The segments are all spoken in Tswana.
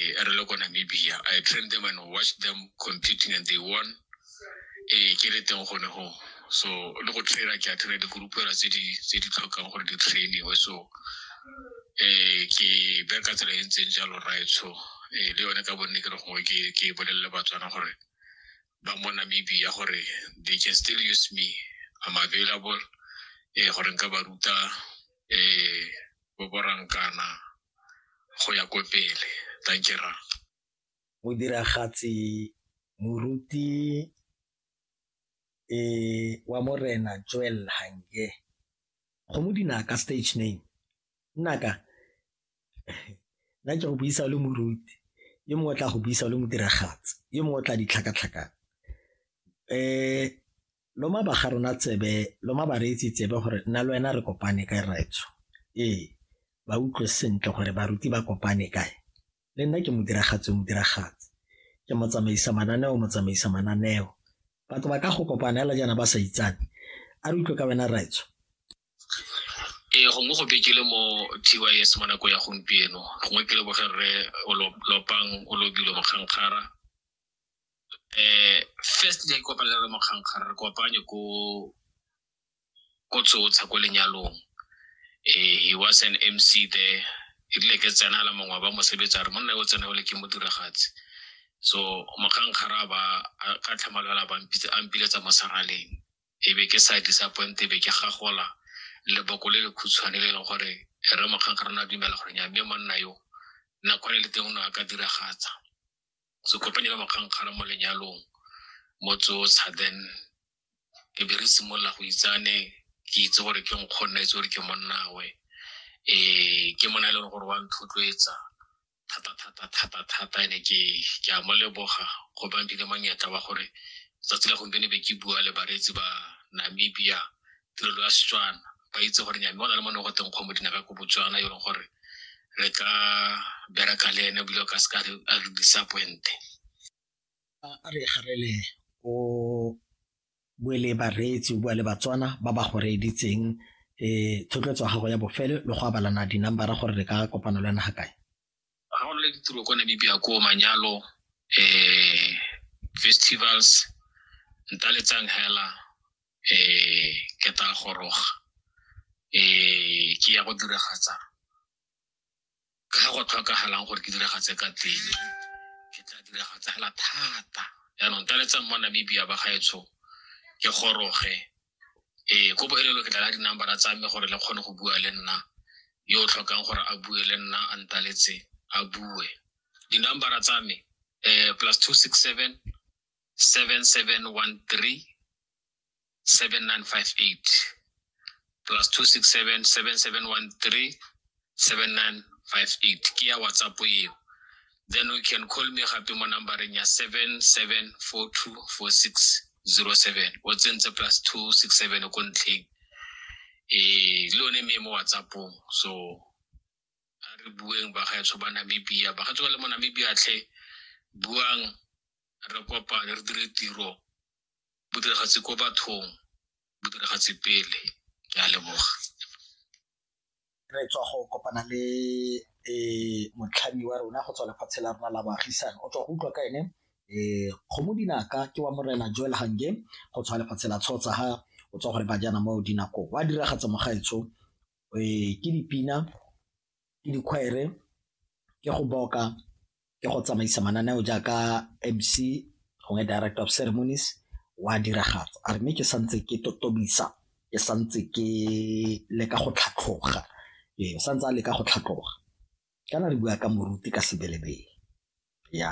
eh, a re le ko namibia i trained them and watched them competing and they won eh, ke le teng gone go so le go traina ke a traina dikurupela tse di tlhokang gore di trainiwe so um ke bereka tsela e ntseng jalo right so um le yone ka bonne ke re gongwe ke bolelele batswana gore ba mo namibia gore they can still use me i'm available um gore nka ba ruta um boborankana go ya ko pele thank you ra modiragatsi moruti e wa morena joel hange go mo dinaka stage name nnaka nna ke go buisa o le moruti yo mongwe tla go buisa o le modiragatsi yo mongwe tla ditlhakatlhakana um loma ba ga rona tsebe loma ba reetsi tsebe gore nna le wena re kopane kae raetso ee ba utlwe sentle gore baruti ba kopane kae le nna ke modiragatsi o modiragatsi ke motsamaisa mananeo motsamaisa mananeo batho ba ka go kopana fela jaana ba sa itsane a re utlwe ka wena raetso ee gongwe go bekele mo tys mo nako ya gompieno gongwe ke leboge rre o lopang o lobilo mokgankgara eh first day ko palela mo kgankgara re kopanye ko ko tsotsha ko lenyalong eh he was an MC there e rile ke tsena la mongwe ba mosebetsa re monna yo tsena o le ke mo diragatse so mokgankgara ba ka tlhamalwela ba a mpiletsa mo saraleng e be ke sa disappoint e be ke gagola leboko le le khutshwane le e leng gore re mokgankgara na dumela gore nya mme monna yo nakwane le teng o ne a ka diragatsa so kopanye la makgankgara mo lenyalong mo tsotsha then ke be re simolola go itsane ke itse gore ke nkgonna itse gore ke monnawe um ke mona e leng gore wa ntlhotloetsa thata thata thata thata ene ke ke a mo leboga go bang dile monyetla wa gore tsatsi la gompieno be ke bua le bareetsi ba namibia tirelo ya setswana ba itse gore nyame o na le mo ne go teng kgomo dinaka ko botswana e leng gore re ka bereka le ene ebile o ka se ka a re disappointe a re garele o bue le bareetsi o bua le batswana ba ba go reeditseng um thotloetso ya gago ya bofelo le go abalana di-numbera gore re ka kopano le naga kae ga go le ditiro kwa namibia ko manyalo um festivals ntaletsang hela um ke tla goroga um ke ya go diragatsa ka go tlhokagalang gore ke diragatse ka teng ke tla diragatsa hela thata yaanong ntaletsang mo namibia ba gaetsho ke goroge ee ko boelelo ke tla ka dinambara tsa me gore le kgone go bua le nna yo o tlhokang gore a bue le nna a ntaletse a bue dinambara tsa me um plus two six seven seven seven one three seven nine five eight plus two six seven seven seven one three 7958 ke ya whatsapp eo then you can call me gape mo numbereng ya 77424607 o tsentse plus 267 ko ntlheng e le one mme mo whatsappong so a re bueng bagaetsho ba namibia bagaetsho ba le mo namibia tlhe buang re kopane re dire tiro bodiragatsi ko bathong bodiragatsi pele ke a leboga re tswa go kopana le um motlhami wa rona go tswa lefatshe la rona la baagisane o tswa go utlwa ka ene um kgomo dinaka ke wa morena joel hange go tswa lefatshe la tshotsa ha o tswa gore bajana mo dinako wa diragatsa mogaetsho um ke dipina ke dikgwere ke go boka ke go tsamaisa mananeo jaaka mc gongwe director of ceremonies wa diragatsa a re mme ke santse ke totobisa ke santse ke leka go tlhatlhoga ee o santse a leka go tlhatlhoga kana re bua ka moruti ka sebelebele ya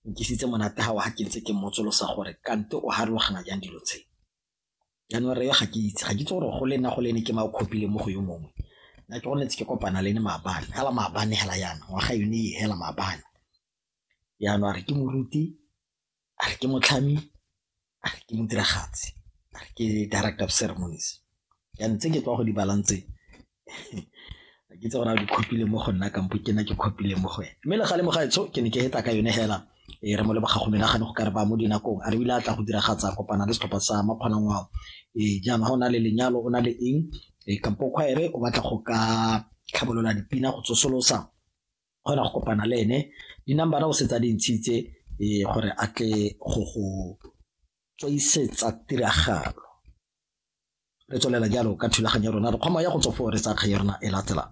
nkisitse monate ga wa ga ke ntse ke mmotsolosa gore kante o harologana jang dilo tse January eo ga ke itse ga ke itse gore go le nna go le ene ke ma o copy-le mo go yo mongwe nna ke gone tse ke kopana le ene maabane fela maabane fela yana ngwaga yone e fela maabane jaanong a re ke moruti a re ke motlhami a re ke modiragatsi a re ke director of ceremonies jaanong tse ke tswa go di balang tse ga ke itse gore a di copile mo go nna kampo ke nna ke copile mo go ene mme le gale mo gaetsho ke ne ke eta ka yone fela e re mo le bogago menagane go ka re ba mo dinakong a re ile a tla go diragatsa kopana le setlhopha sa makgonang wao ee jaana ga o na le lenyalo o na le eng e kampo kgwaere o batla go ka tlhabolola dipina go tsosolosa kgona go kopana le ene di-numbera o setsa di ntshitse ee gore a tle go go tswaisetsa tiragalo Re tswelela jalo ka thulaganyo ya rona, re kgoma ya go tswa foo re tsaya kgang ya rona e latelang.